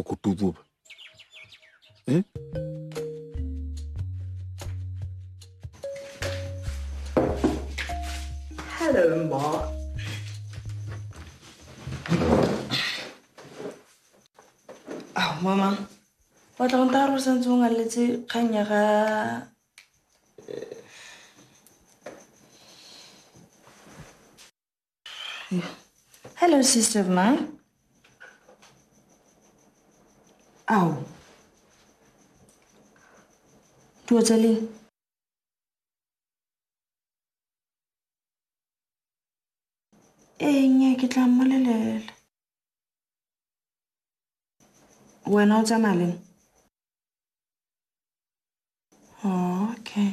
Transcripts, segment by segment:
ọkụ tupu eh? Hello, Mark. Oh, Mama. Wa tla go nta go santse o ngaletse kgang ya ga Hello, sister of mine. Ao. Tua tsa leng? Ee, nnye, ke tla mmolelela. Wena o tsamaya leng? Oh, okay.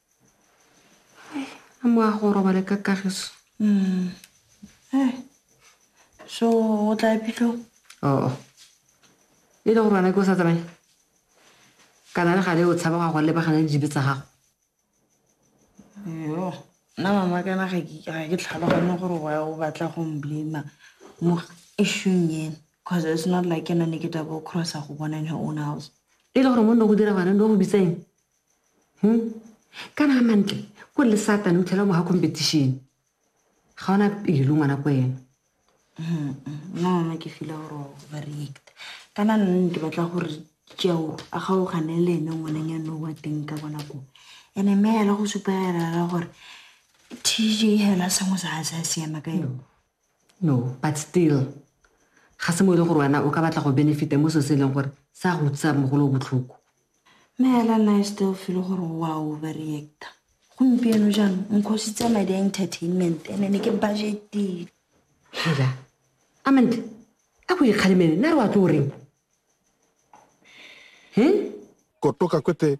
a mo a go robale ka kagiso mm. eh. so o tla epitlo oo oh. e le go bana ke o sa tsamaye kana le gale o tshaba ga go lebagana le dibe tsa gago yo nna mama kana ga ke tlhalogane gore wa o batla go mblema mo eshung ena because it's not like ena ne ke tabo crossa go bona in her own house e le gore mo nne go dira gone no go bitseng hmm? kana a mantle ko le satane o tlhela mo ga competition ga ona pelo ngwana ko ena nna ke fila gore ba react kana nne ke batla gore jeo a gaogane le ene ngwaneng ya no wa teng ka bona ko ene mme ela go supa elela gore tj hela sengwe sa ga se a siama ka yone No, but still, ga se mo e le gore wena o ka batla go benefita mo so se e leng gore sa go utsisa mogolo o botlhoko. Mme hela nna e still feel gore wa overreacta. Gompieno jang nkhositse madi a entertainment ene ne ke budgetile. Hela, Amanda, a ko ikgalemele, nna re wa tlo o reng? He? Kotoka kwete